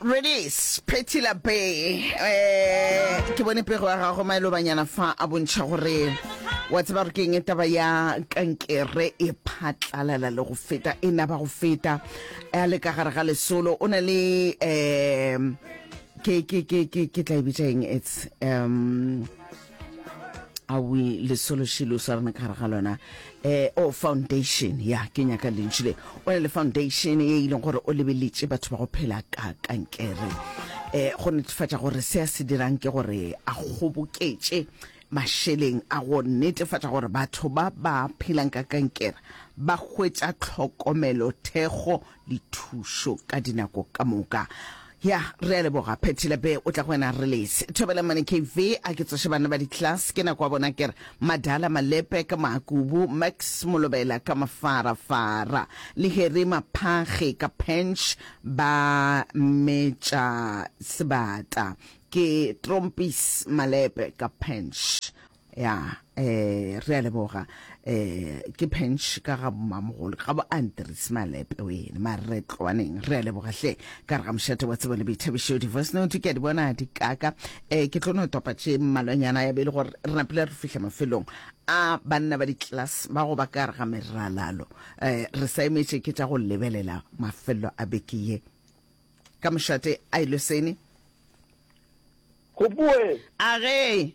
Redis Phethila Be eh, ke bone pego ya gago maelo banyana fa a bontšha gore wa tseba gore ke eng e taba ya kankere e phatlalala le go feta e naba go feta a le ka gare ga lesolo o na le um ke ke ke ke ke tla e bitša eng its um a we lesološilo sa rena ka gare ga lona eh o oh, foundation ya ke nyaka lentši le o ne le foundation ye e leng gore o lebeletše batho ba go phela ka kankere eh go netefatša gore se a se dirang ke gore a kgoboketše mašeleng a go netefatša gore batho ba ba phelang ka kankere ba hwetša tlhokomelo thekgo le thušo ka dinako ka moka. Ya, re a leboga. Phethile be o tla go wena re lese. Thobela mane KV, a ke tsoše bana ba di-class, ke nako wa bona ke re, Madala Malepe ka Makubu, Max Molobela ka Mafarafara, le Harry Maphage ka Pench ba metša sebata. Ke Trompis Malepe ka Pench. Ya, eh, re a leboga. Eh, ke Pench ka ga mmamogolo, ka bo Andres Malepe wene, ma re tloaneng. Re a leboga hle, ka re ga mošate wa tsebo le boithabišo, di-voice note ke a di bona di kaka. Eh, ke tlo no topa tše mmalwanyana ya be e le gore re napile re fihla mafelong a banna ba di-class ba go ba ka re ga meralalo. Eh, re sa emetše ke tša go lebelela mafelelo a beke ye. Ka mošate a ilosene. Gopoe. A ge.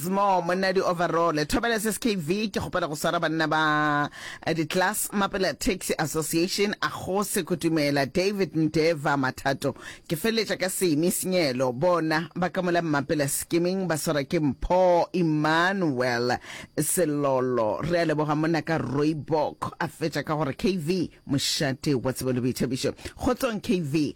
Small monna di overall thobela se skv ke kgopela go swara banna ba eh, di class mapela taxi association a go se kutumela david ndeva mathato ke feleletša ka semi senyelo bona ba ka mola mmapela skimming ba swara ke mpho emmanuel selolo re a leboga monna ka roibok a fetša ka gore kv mošate wa tsebo le boithabišo kgotsong kv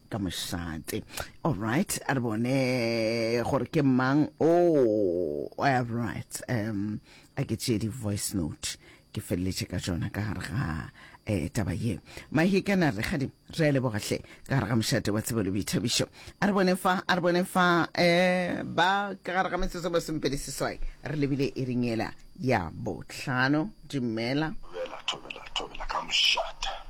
ka mošate all right a re bone gore ke mang o oh, all right um a ke tšee di-voice note ke feleletše ka tsona ka gare ga um taba ye mahikana re gadi re a lebogatlhe ka gare ga mošate wa tsebelo boithabišo a re bone fa a re bone fa um ba ka gare ga metsotso ba sompedi seswai re lebile e ringela ya botlhano dumela thobela thobela thobela ka mošate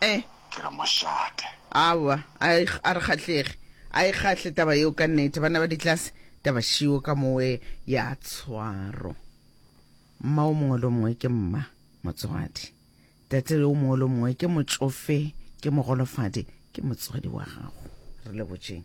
Eh. Ke re mošate. Aowa, a e, a re kgahlege. A e kgahle taba yeo ka nnete. Banna ba ditlase, taba šiwo ka mowe ya tshwaro. Mma o mongwe lo mongwe ke mma, motswadi. Tate yo mongwe lo mongwe ke motšofe, ke mogolofadi, ke motswadi wa gago. Re lebotšeng.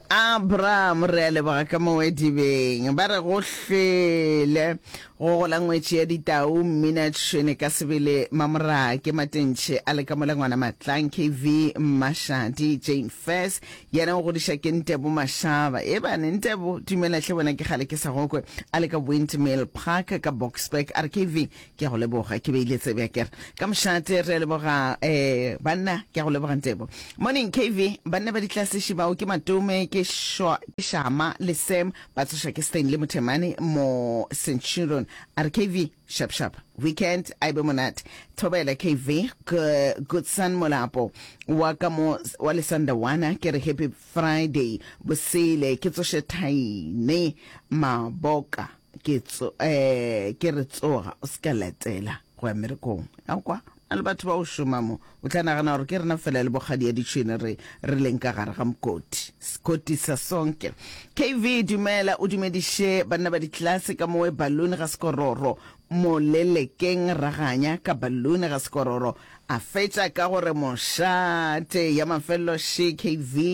Abraham, re a leboga ka mo wedibeng. Ba re go hlwele go gola ngwetši ya ditau, mmina tšhwene ka sebele, mamoraa ke matentšhe a le ka mola ngwana matlang, kv mmashadi, jane fes yena o godiša ke ntebo mashaba, ebane ntebo, dumela hle wena ke kgale ke sa gokwe, a le ka windmill park ka boksburg, a re kv Ke a go leboga. Ke beile tsebe a kere. Ka mošate re a leboga um banna. Ke a go leboga Ntebo. Morning KV, banna ba ditlasiši bao ke Matome, ke Shwa, ke Shama le Sam. Ba tsošwa ke Stanley Mothemane mo Centurion. A re KV, sharp sharp. Weekend a e be monate. Thobela KV, G Goodson Molapo wa ka mo wa Lesandawana. Ke re happy Friday. Bosele ke tsoše Thaine Maboka. Ke tso, eh, ke re tsoga, o se ka letela go ya merekong. Ya kwa, na le batho ba o šoma mo. O tla nagana gore ke rena fela le bokgadi ya ditšhwene re, re leng ka gare ga mokoti. Sekoti sa sonke. KV, dumela, o dumediše banna ba ditlelase ka mowe balloon ga sekororo mo lelekeng. Raganya ka balloon ga sekororo. A fetša ka go re, Mosha, tee ya mafelelo še, KV,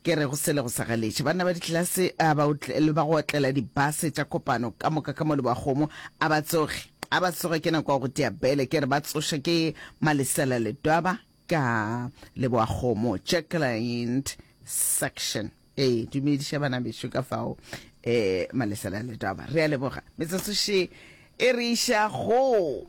ke re go sele go sa galetše. Banna ba ditlelase a ba otle, le ba go otlela dibase tša kopano ka moka ka mo le bakgomo, a ba tsoge. A ba tsoge, ke nako ya go tea bele. Ke re ba tsošwe ke malesela le twaba ka leboa kgomo. Jacqueline, section, E, dumediša bana bešo ka fao, e, malesela le twaba. Re a leboga. Metsotso še e re iša go.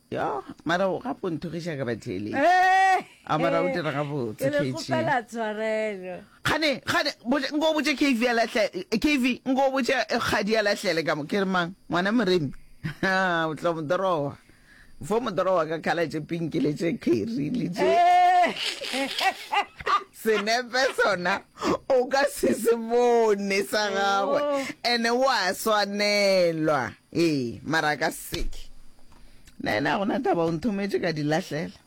yo mara o gape o nthogiša ka batheeletši a mara o dira gabotse kgane kgane nko o botse kv ya lahlele kv nko o botse kgadi ya lahlele ka mo ke re mang ngwana moremi o tla modorowa fo modorowa ka khala tše pinkile tše kheri le tše Senepe sona o ka se se bone sa gagwe oh. ene o a swanelwa ee mara ka seke na ena gona taba o nthometše ka dilahlela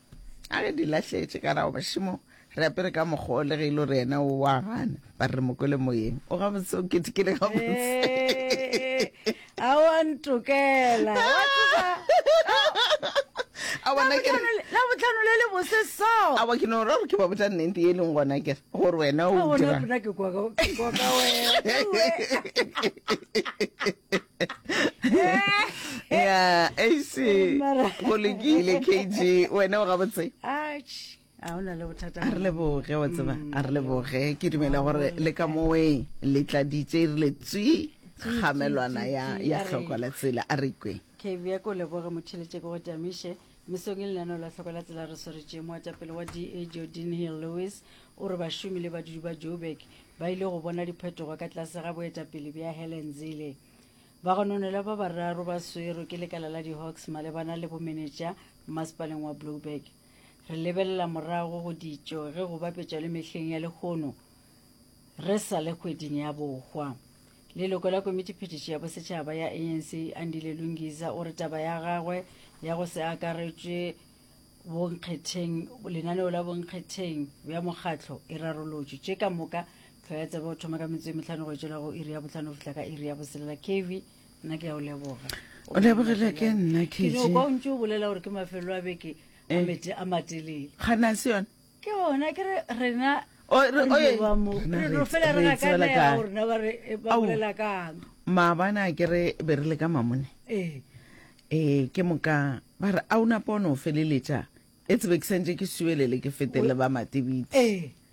a ge dilahletše ka rago bašimo re apere ka mokgwa o le ge e le gore ena o wa gana ba re mokwele moyeng o gabotse o ketekele gabotse a wa ntokela wa tseba a bona ke la botlhano le le bose so a wa ke no ra ke ba botsa nnete e leng gona ke gore wena o dira bona ke kwa kwa ka wena ya ac go lekile kg wena o ga botse a o na le bothata a re leboge wa tseba mm, a re leboge ke dumela gore le ka moweng le tladitse re le tswi kgamelwana ya ya tlhoko la tsela a re kwe ke bja ko leboge motheletse go tamiše mesong e lenano la tlhoko la tsela re sweretse moatapele wa da jordan hill lewis o re bašomi le badudi ba joburg ba ile go bona diphetogo ka tlase ga boetapele bja helen zele bagononela ba bararo ba swero ke lekala la di-hawks malebana le bomenetša mmasepaleng wa blueburg Re lebelela morago go ditšo ge go bapetšwa le mehleng ya lehono re sa le kgweding ya bohwa. Leloko la Komiti Phetiši ya Bosetšhaba ya ANC, Andile Lungiza, o re taba ya gagwe ya go se akaretšwe bonkgetheng lenaneo la bonkgetheng bja mokgatlo e rarolotšwe. Tše ka moka tlhwaetsebe o thoma ka metsotso e mehlano go etšwela go iri ya bohlano go fihla ka iri ya boselela. Kevy nna ke ya o leboga o lebogile ke nna kejo kwa o ntse o bolela gore ke mafelo a beke a eh. mete a matelele gana se yone ke ona ke re rena maabana ke re be re le ka mamone ee eh, ke moka ba re a o napa o ne o feleletša e tsebe ke santse ke suelele ke fetele ba matebitse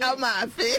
ka mafe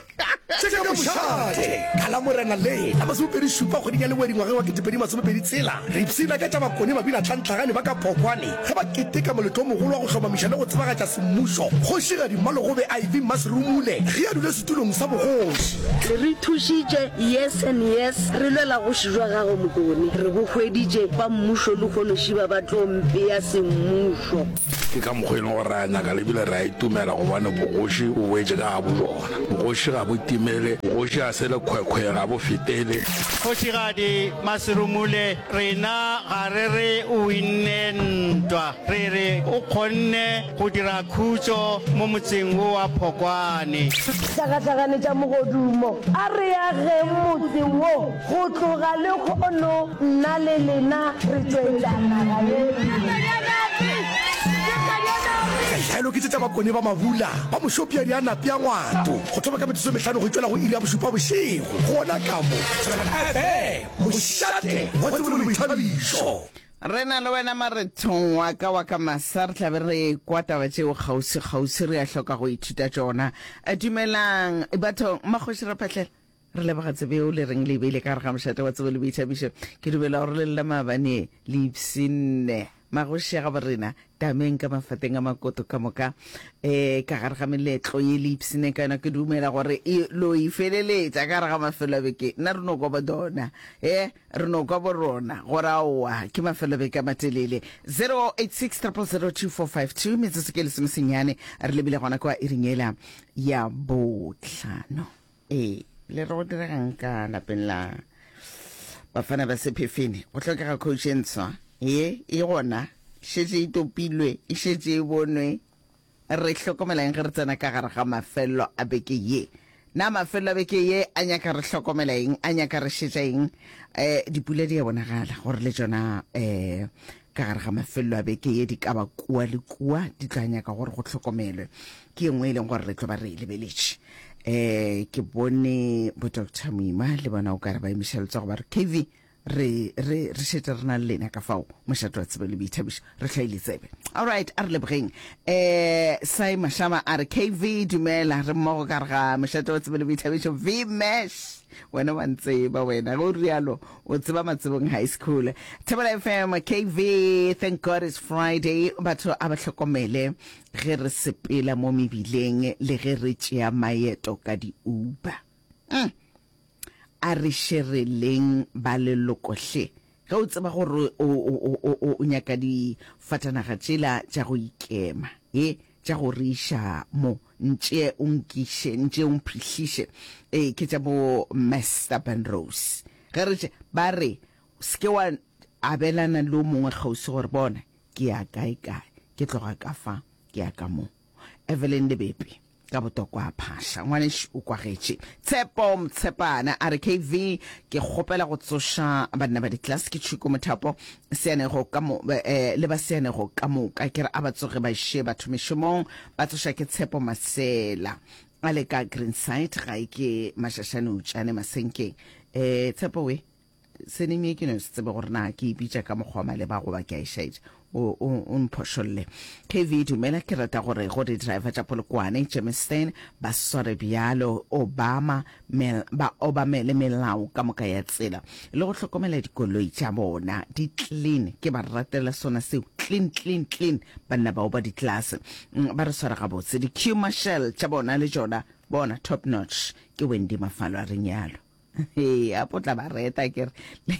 tseka bošate ka la morena le la masomepedi šupa kgweding ya lengwedi ngwageng wa ketepedi masomepedi tsela re ipsina ka tša bakone mabina tlhantlhagane ba ka phokwane ge ba keteka moletlo mogolo wa go hlomamiša le go tsebagatša semmušo kgošigadi mmalogobe iv mmasirumule ge a dule setulong sa bogoši se re thušitše yes and yes re lwela goši jwa gagwe mokone re bo hweditše ba mmušo le kgonošiba ba tlo mpeya semmušo Ke ka mokgwa e lego gore re a nyaka le ebile re a itumela gobane bogoši bo boetše ka ga bobona. Bogoši ga bo timele, bogoši ga se lekhwekhwe, ga bo fetele. Kgošigadi Maserumule, rena ga re re o winne ntwa, re re o kgonne go dira khutšo mo motseng wo wa Phokwane. Hlagahlagane tša mogodumo, a re ageng motse wo. Go tloga lehono nna le lena re tšwetša naga ye pele. Dialo ke tše tša bakone ba mabula ba mošopiadi a napea ngwato go thoma ka metsotso e mehlano go itšwela go iri ya bošupa bošego. Gona ka mo Tswelana FM, mošate wa tsebo le boithabišo. Re na le wena marethong wa ka wa ka masa, re tla be re kwa taba tšeo kgauswi-kgauswi, re a hloka go ithuta tšona. Dumelang bathong, Makgoši Raphahlela. Re leboga Tsebeo le reng le e beile ka gare ga mošate wa Tsebo le Boithabišo. Ke dumela gore le lla maabane le ipshinne magoši a gabo rena tameng ka mafateng a makoto ka moka e ka gare ga meletlo ye le ipshinne ka yona. Ke dumela gore e lo e feleletša ka gare ga mafelo a beke nna re no kwa bodona e re no kwa borona gore aowa ke mafelo a beke a matelele 086 002452 metsotso ke lesomesenyane re lebile gona kwa iringela ya botlhano. ee le re go diregang ka lapeng la bafana ba sephefene go tlhokega coach e ntswa ye e gona šetse e topilwe e šetse e bonwe re hlokomelang ge re tsena ka gare ga mafelelo a beke ye na mafelelo a beke ye a nyaka re hlokomela eng a nyaka re šetša eng um dipula di a bonagala gore le tsona um Ka gare ga mafelelo a beke ye, di ka ba kua le kua, di tla nyaka gore go hlokomelwe. Ke ye nngwe e leng gore re tlo ba re e lebeletše. Um ke bone bo Doctor Moima le bona o kare ba emiša letsogo ba re KV re re re šetše re na le lena ka fao mošate wa tsebo le boithabišo re hlwaile tsebe allright a re lebogeng um sai mashama a re kv dumela re mmogo ka re ga mošate wa tsebo le boithabišo vmash wena wa ntseba wena go rialo O tseba Matsibong High School. Thobela FM, KV, thank God it's Friday. Batho a ba hlokomele ge re sepela mo mebileng le ge re tšea maeto ka di-Uber. Mm. A re šereleng ba leloko hle. Ge o tseba gore o nyaka difatanaga tšela tša go ikema. He. Tša go re iša mo, ntšee o nkiše, ntšee o mphihliše. Ee, ke tša bo Mester Penrose. Ge re tše, ba re, Se ke wa abelana le o mongwe kgauswi gore, Bona, ke ya kae kae, ke tloga ka fa, ke ya ka mo. Evelyn le Bepi, ka botokwa a phaša. Ngwanešu o kwagetše. Tshepo Motshepane a re, KV, ke kgopela go tsoša banna ba ditlase. Ke Tšhuko Mothapo. Seanego ka mo, eh, le ba seanego ka moka, ke re a ba tsoge ba še batho mešomong, ba tloša ke Tshepo Masela a le ka Greenside, gae ke Mašašane Utšane Masenkeng. Eh, Tshepo we, senimi ye ke no se tsebe gore na ke e bitša ka mokgwa wa maleba goba ke a e šaetša, o, o, o mphošolle. KV, Dumela, ke rata gore go di-driver tša Polokwane, Germiston, ba sware bjalo, Obama, Mel, ba obamele melao ka moka ya tsela, le go hlokomela dikoloi tša bona, di clean. Ke ba ratela sona seo, clean, clean, clean, banna bao ba ditlase. Mm, ba re swara gabotse. Di queue marshal tša bona le tšona, bona, top notch. Ke Wendy Mafalo a reng yalo. He, a potla ba reta, ke re.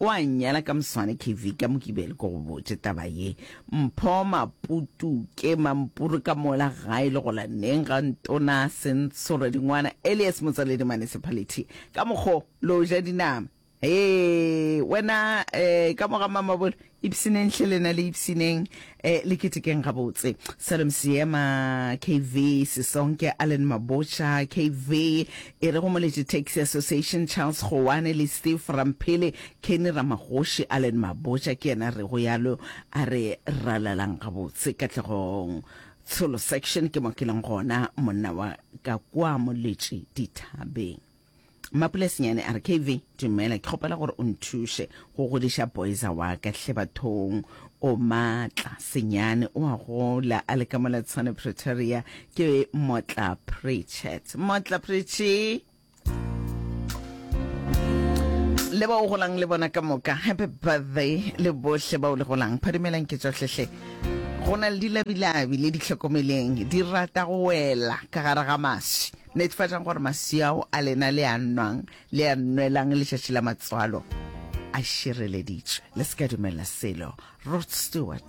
O a nnyala ka moswane KV ka Mokibelo ke go botše taba ye. Mpho Maputu ke mampuru ka mola gae le gola neng ga Ntona Sentshore Dingwana alias Motsaledi Municipality ka mokgo lo ja dinama. Hee wena eh ka moga Mamabolo ipsineng hle lena le ipsineng. E le ketekeng gabotse. Salom Seema, KV, Sesonke, Allen Mabotja, KV, e re go Moleti Taxi Association, Charles Goane le Steve Ramphele, Kenny Ramagoši, Allen Mabotja ke yena re go yalo a re ralalang gabotse Katlegong Tsholo Section ke mo ke leng gona monna wa ka kua Moletši Dithabeng. Mapulasinyane a re, KV, dumela, ke kgopela gore o nthuše go godiša boyza wa ka hle bathong. O matla, senyane, o a gola, a le ka mola Tshwane Pretoria. Ke Motla Pritchett. Motla Pritchie! le ba o golang le bona ka moka happy birthday le bohle ba o le golang phadimelang ke tsohlehle go na le dilabilabi le ditlhokomeleng di rata go wela ka gare ga maswi Netefatšang gore maswi ao a lena le a nwang le a nwelang letšatši la matswalo a šireleditšwe. Le se ka dumella selo. Rod Stewart.